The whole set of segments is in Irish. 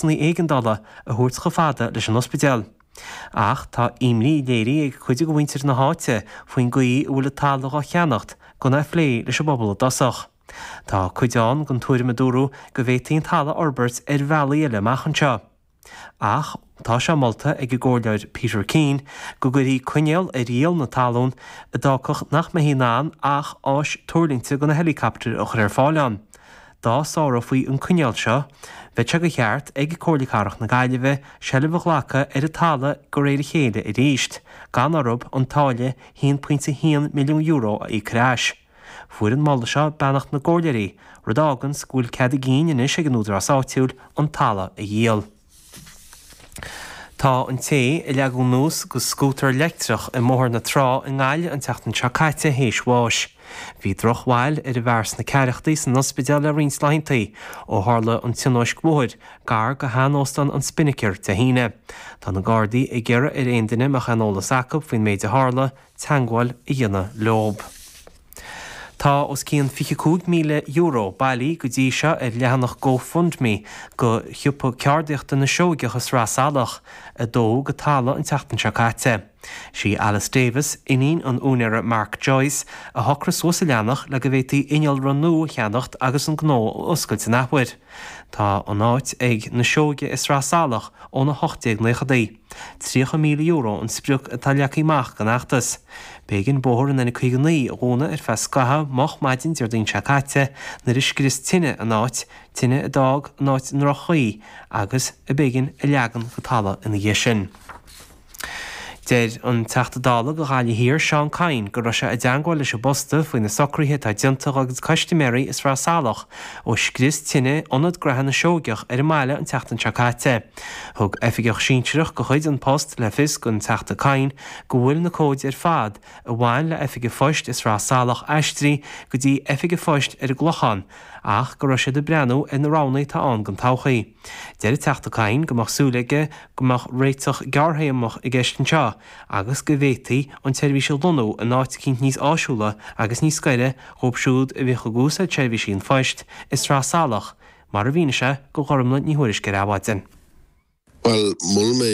éigeandála a thabhairt chomh fada leis an ospidéal. Ach tá imní léirithe ag cuid de mhuintir na háite faoin gcaoi a bhfuil an talamh dá cheannacht gan é a phlé leis an bpobal i dtosach. Tá cuid den tuairim, a dúradh, go bhféadfaí an talamh a fhorbairt ar bhealaí eile amach anseo. Ach tá sé molta ag an gComhairleoir Peter Keane go gcuirfí coinníoll ar dhíol na talún a d'fhágfadh nach mbeifí in ann ach áis tuirlingte do na héileacaptair a chur ar fáil ann. Dá sárófaí an coinníoll seo, bheadh sé de cheart ag Comhairle Cathrach na Gaillimhe seilbh a ghlacadh ar an talamh de réir a chéile arís, gan orthu an táille €1.1 milliún a íoc ar ais. Fuair an moladh seo beannacht na gComhairleoirí, rud a fháganns go bhfuil cead a gcinn anois ag an Údarás Áitiúil an talamh a dhíol. Tá an té a leagadh anuas dho scútar leictreach i mBóthar na Trá i nGaillimh an tseachtain seo caite théis bháis. Bhí drochbhail ar an bhfear sna ceathrachaí san ospidéal le roinnt laethanta ó tharla an tionóisc bhóthair gar dho shean-óstán an Spinnaker Dé hAoine. Tá na Gardaí ag iarraidh ar aon duine a mbeadh aon eolas acu faoin méid a tharla teagmháil a dhéanamh leo. Tá os cionn €25,000 bailithe go dtí seo ar leathanach GoFundMe dho Shiopa Ceardaíochta na Seoigeach i Sraith Salach, a dódh go talamh an tseachtain seo caite. Sí Alice Davis, iníon an úinéara Mark Joyce, a shocraigh suas an leathanach le go bhféadfaí innealra nua a cheannacht agus an gnó a oscailt an athuair. Tá an áit ag na Seoige i Sraith Salach ón 1890idí. €30,000 an sprioc atá leagtha amach don fheachtas. B'éigean bóthar an N59 a dhúnadh ar feadh scaithimh moch maidin Déardaoin seo caite nuair a scrios tine an áit, tine a d'fhág an áit i ndroch-chaoi agus ab éigean a leagan go talamh ina dhiaidh sin. Deir an Teachta Dála do Ghaillimh Thiar, Seán Kyne, go raibh sé i dteangmháil leis an bPosta faoi na socruithe atá déanta acu do chustaiméirí i Sraith Salach ó scrios tine Ionad Gnaithe na Seoigeach ar an mbaile an tseachtain seo caite. Thug oifigeach sinsearach de chuid An Post le fios dhon Teachta Kyne go bhfuil na comhaid ar fad a bhain le Oifig an Phoist i Sraith Salach aistrithe go dtí Oifig an Phoist ar an gClochán ach go raibh siad ag breathnú ar na roghanna atá ann don todhchaí. Deir an Teachta Kyne go mbeadh súil aige go mbeadh réiteach gearrthéarmach i gceist anseo agus go bhféadfaí an tseirbhís a lonnú in áit eicínt níos áisiúla agus níos gaire dhóibh siúd a bhíodh ag úsáid seirbhísí an phoist i Sraith Salach Mar a mhínigh sé dho Ghormfhlaith Ní Thuairisg ar Adhmhaidin. Bhuel, mhol mé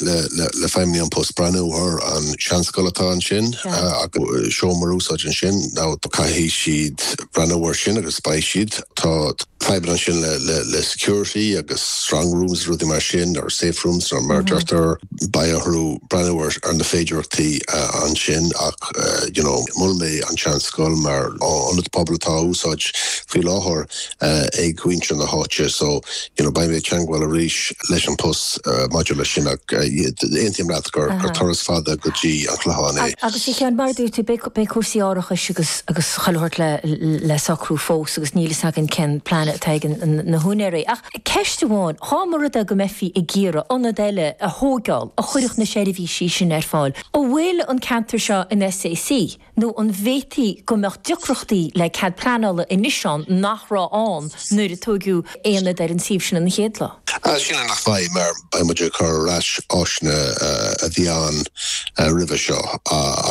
le feidhmeannaigh An Post breathnú ar an seanscoil atá ansin agus seomra a úsáid ansin now caithfidh siad breathnú air sin agus beidh siad. Tá fadhbanna ansin le security agus strong rooms is rudaí mar sin, or safe rooms nó mar a deirtear. Beidh orthu breathnú ar na féidireachtaí ansin ach you know mhol mé an seanscoil mar ionad pobail atá á úsáid faoi láthair. ag mhuintir na háite so you know beidh mé ag teangmháil arís leis an post maidir leis sin ach aontaím leat gur turas fada go dtí an Clochán é. Agus a Sheáin, mar a dúirt tú beidh cúrsaí árachais agus agus chuile shórt le socrú fós agus níl a fhios againn cén plean atá ag na húinéirí. Ach ceist amháin, dá mba rud é go mbeifí ag iarraidh ionad eile a thóigeáil a chuirfeadh na seirbhísí sin ar fáil? An bhfuil an ceantar seo in SAC? Nó an bhféadfaí go mbeadh deacrachtaí le cead pleanála anois ann nach raibh ann nuair a tóigeadh aonad ar an suíomh sin an chéad lá? Sílim nach mbeidh, mar beidh muid ag cur ar ais áiseanna a bhí ann roimhe seo.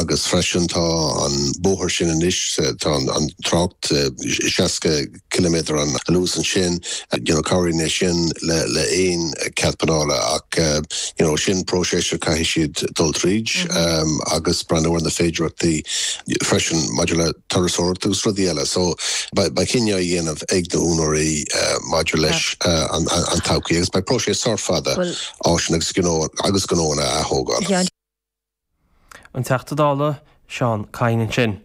Agus freisin, tá an bóthar sin anois, tá an trácht 60. ciliméadar an luas ansin you know cabhraíonn sé sin le le aon cead pleanála ach you know sin próiseas a caithfidh siad dul tríd agus breathnú ar na féidearthachtaí freisin maidir le turasóireacht agus rudaí eile so beidh beidh cinneadh a dhéanamh ag na húinéirí maidir leis an an todhchaí agus beidh próiseas sách fada áiseanna agus gnó agus gnóanna a thógáil. an Teachta Dála Seán Kyne ansin.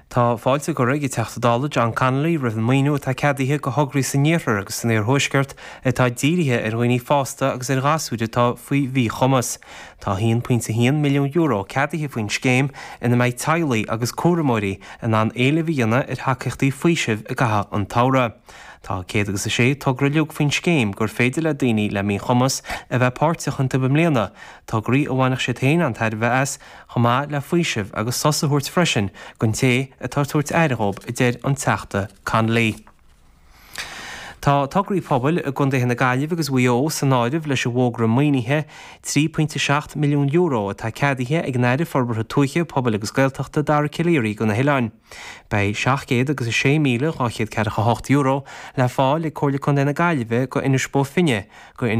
Tá fáilte curtha ag an Teachta Dála John Connolly roimh an maoiniú atá ceadaithe go thograí san iarthar agus san iarthuaisceart atá dírithe ar dhaoine fásta agus ar ghasúir atá faoi mhíchumas. Tá €1.1 milliún ceadaithe faoin scéim ina mbeidh teaghlaigh agus cúramóirí in ann éileamh a dhéanamh ar thacaíochtaí faoisimh i gcaitheamh an tsamhraidh. Tá céad agus a sé togra uiliug faoin scéim gur féidir le daoine le míchumas a bheith páirteach iontu i mbliana, tograí a bhainfeadh siad féin an-tairbhe as, chomh maith le faoiseamh agus sos a thabhairt freisin don té atá ag tabhairt aire dhóibh, a deir an Teachta Connolly. Tá tograí pobail i gcondaetha na Gaillimhe agus Mhaigh Eo san áireamh leis an bhfógra maoinithe €3.7 milliún atá ceadaithe ag an Aire Forbartha Tuaithe, Pobail agus Gaeltachta, Dara Calleary do na hoileáin. Beidh seacht gcéad agus a sé míle, dhá chéad ceathracha hocht euro, le fáil ag Comhairle Contae na Gaillimhe go Inis Bó Finne, go